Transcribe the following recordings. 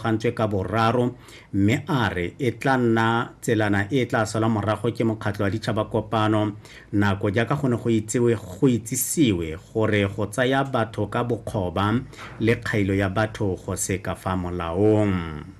gantswe ka boraro mme a re e tla nna tselana e e tla salwa morago ke mokgatlho wa ditšhabakopano nako jaaka go ne go itsewe go itsisiwe gore go tsaya batho ka bokgoba le kgailo ya batho go se ka fa molaong.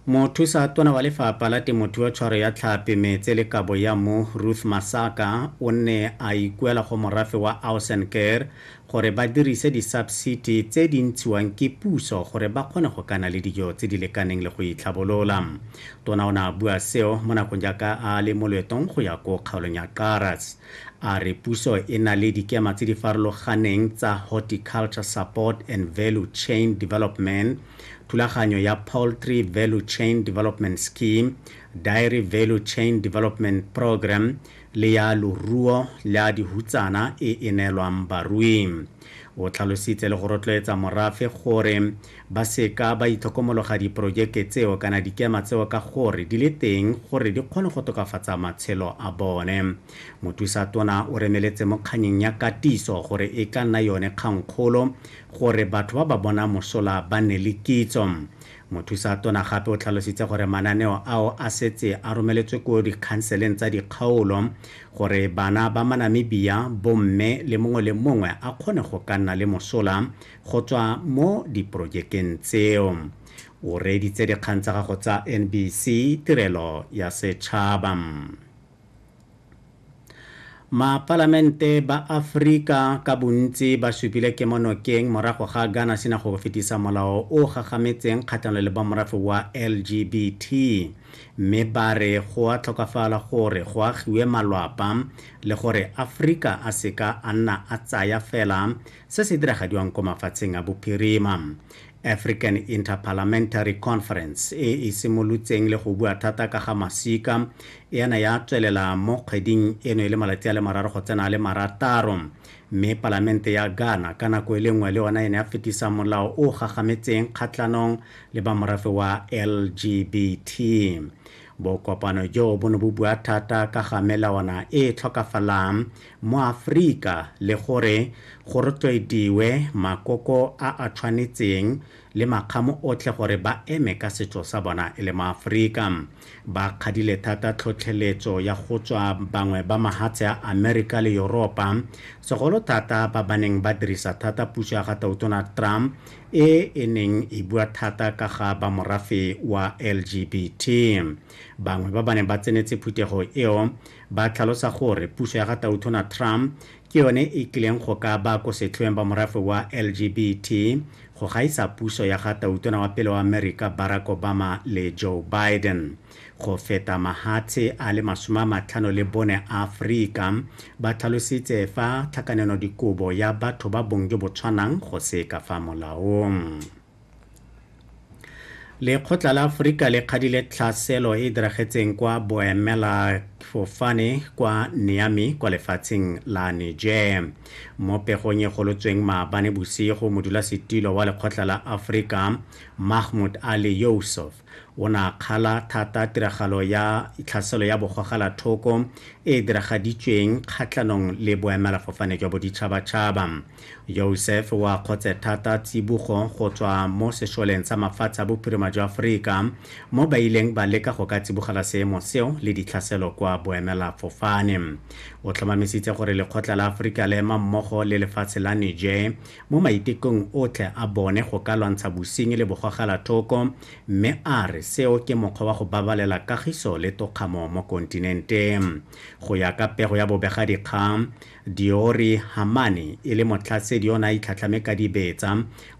Mothusa Tona wa Lefapha la Temothuo Tshwaro ya Tlhapi, Metse le Kabo ya Mmu Ruth Masaka o nne a ikuela go morafe wa Ausen Care gore ba dirise disabsiti tse di ntshiwang ke puso gore ba kgone go ka na le dijo tse di lekaneng le go itlhabolola. Tona o ne a bua seo mo nakong jaaka a le mo loetong go ya ko kgaolong ya Karas. A re puso e na le dikema tse di farologaneng tsa Horticulture Support and Value Chain Development, Thulaganyo ya Poultry Value Chain Development Scheme, Dairy Value Chain Development Program le ya loruo la dihutsana e e neelwang barui. O tlhalositse le go rotloetsa morafe gore ba seka ba itlhokomologa diporojeke tseo kana dikema tseo ka gore di le teng gore di kgone go tokafatsa matshelo a bone. Mothusa Tona o remeletse mo kganyeng ya katiso gore e ka nna yone kgangkgolo gore batho ba ba bonang mosola ba nne le kitso. Mothusa tona gape o tlhalositse gore mananeo ao a setse a romeletswe ko dikhanseleng tsa dikgaolo gore bana ba Manamibia, bomme le mongwe le mongwe a kgone go ka nna le mosola go tswa mo diporojekeng tseo. O reeditse dikgang tsa gago tsa NBC Tirelo ya Setšhaba. Mapalamente ba Afrika ka bontsi ba supile kemonokeng morago ga Ghana sena go fetisa molao o gagametseng kgatlhanong le ba morafe wa LGBT mme ba re go a tlhokafala gore go agiwe malwapa le gore Afrika a seka a nna a tsaya fela se se diragadiwang ko mafatsheng a bophirima. African Interparliamentary Conference e e simolotseng le go bua thata ka ga masika e yana ya tswelela mo kgweding eno e le malatsi a le mararo go tsena a le marataro mme palamente ya Ghana ka nako e le nngwe le yona e ne ya fetisa molao o gagametseng kgatlhanong le ba morafe wa LGBT bokopano joo bo ne bo bua thata ka ga melawana e e tlhokafalang mo Afrika le gore go rotloediwe makoko a a tshwanetseng le makgamo otlhe gore ba eme ka setso sa bona e le Maafrika. Ba kgadile thata tlhotlheletso ya go tswa bangwe ba mahatshe a Amerika le Yoropa, segolo thata ba ba neng ba dirisa thata puso ya ga Tautona Trump e e neng e bua thata ka ga ba morafe wa LGBT. Bangwe ba ba neng ba tsenetse phuthego eo Ba tlhalosa gore puso ya ga Tautona Trump ke yone e kileng go ka ba ko setlhoeng ba morafe wa LGBT go gaisa puso ya ga Tautona wa pele wa Amerika Barack Obama le Joe Biden. Go feta mahatshe a le masome a matlhano le bone a Afrika ba tlhalositse fa tlhakanenodikobo ya batho ba bong jo bo tshwanang go se ka fa molaong. lekgotla la aforika le kgadile tlhaselo e e diragetseng kwa boemela fofane kwa niami kwa lefatsheng la niger mo pegong e golotsweng maabane bosigo modulasetilo wa lekgotla la aforika mahmud ali yousuf o ne a kgala thata tiragalo ya tlhaselo ya bogogela thoko e e diragaditsweng kgatlhanong le boemela fofane jwa boditšhabatšhaba Yousef o a kgotse thata tsibogo go tswa mo sešoleng sa mafatshe a bophirima jwa Aforika mo ba ileng ba leka go ka tsibogela seemo seo le ditlhaselo kwa boemela fofane. O tlhomamisitse gore lekgotla la Aforika le ema mmogo le lefatshe la Niger mo maitekong otlhe a bone go ka lwantsha bosenyi le bogogelathoko mme a re seo ke mokgwa wa go babalela kagiso le tokgamo mo kontinenteng. Go ya ka pego ya bobegadikgang, Diori Hamane e le motlhasedi o ne a itlhatlhame ka dibetsa,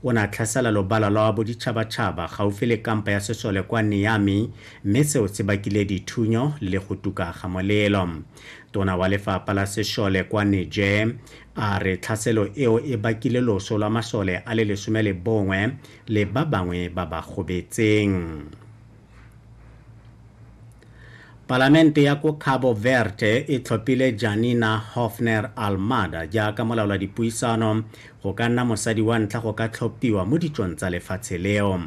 o ne a tlhasela lobala lwa boditšhabatšhaba gaufi le kampa ya sesole kwa Niamey mme seo se bakile dithunyo le go tuka ga molelo. Tona wa lefapha la sešole kwa Niger a re tlhaselo eo e bakile loso lwa masole a le lesome le bongwe le ba bangwe ba ba gobetseng. palamente ya ko cabo verde e tlhophile janina hofner almada jaaka molaola dipuisano go ka nna mosadi wa ntlha go ka tlhophiwa mo ditsong tsa lefatshe leo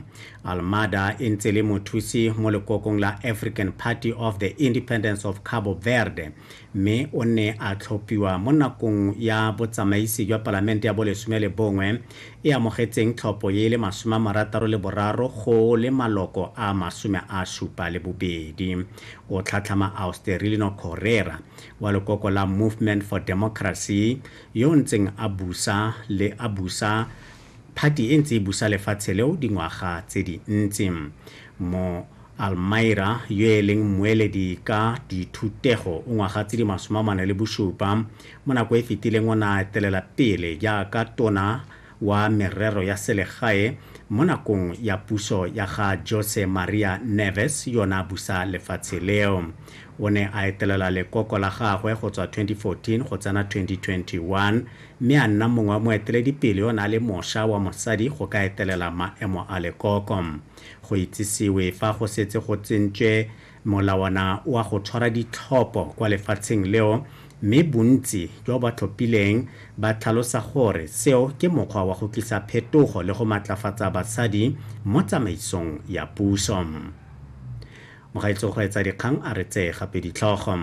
almada e ntse le mothusi mo lekokong la african party of the independence of cabo verde mme o ne a tlhophiwa mo nakong ya botsamaisi jwa Palamente ya bolesome le bongwe e amogetseng tlhopho e le masome a marataro le boraro go le maloko a masome a supa le bobedi. O tlhatlhama Austerilino Correra wa lekoko la Movement for Democracy yo o ntseng a busa le a busa phati e ntse e busa lefatshe leo dingwaga tse dintsi mo Almyra, yo e leng mmueledi ka dithutego o ngwaga tse di masome a mane le bosupa, mo nako e fetileng o ne a etelela pele jaaka tona wa merero ya selegae mo nakong ya puso ya ga Jose Maria Neves yo ne a busa lefatshe leo. O ne a etelela lekoko la gagwe go tswa 2014 go tsena 2021 mme a nna mongwe wa moeteledipele yo ne a le mosha wa mosadi go ka etelela maemo a lekoko. Go itsisiwe fa go setse go tsentswe molawana wa go tshwara ditlhopho kwa lefatsheng leo mme bontsi jwa ba tlhophileng ba tlhalosa gore seo ke mokgwa wa go tlisa phetogo le go matlafatsa basadi mo tsamaisong ya puso. Mogaetsho Kgweetsadikgang a re tsee gape ditlhogo.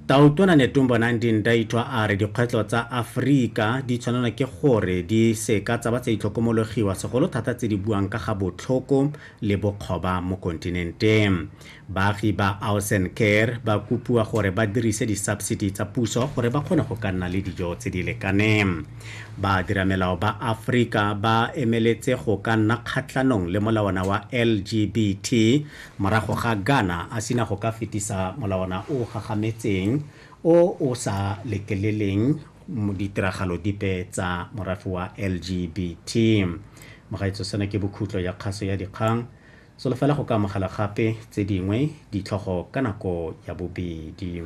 Tautona Netumbonang Dindaitwa a re dikgwetlho tsa Aforika di tshwanelwa ke gore di se ka tsa ba tsa itlhokomologiwa segolo thata tse di buang ka ga botlhoko le bokgoba mo kontinenteng. Baagi ba Ausen Ker ba kopiwa gore ba dirise di-subsidy tsa puso gore ba kgone go ka nna le dijo tse di lekaneng. Baadiramelao ba Afrika ba emeletse go ka nna kgatlhanong le molawana wa LGBT morago ga Ghana a sina go ka fetisa molawana o o gagametseng o o sa letleleleng ditiragalo dipe tsa morafe wa LGBT. Mogaetso seno ke bokhutlo ya kgaso ya dikgang. Solofela go ka amogela gape tse dingwe ditlhogo ka nako ya bobedi.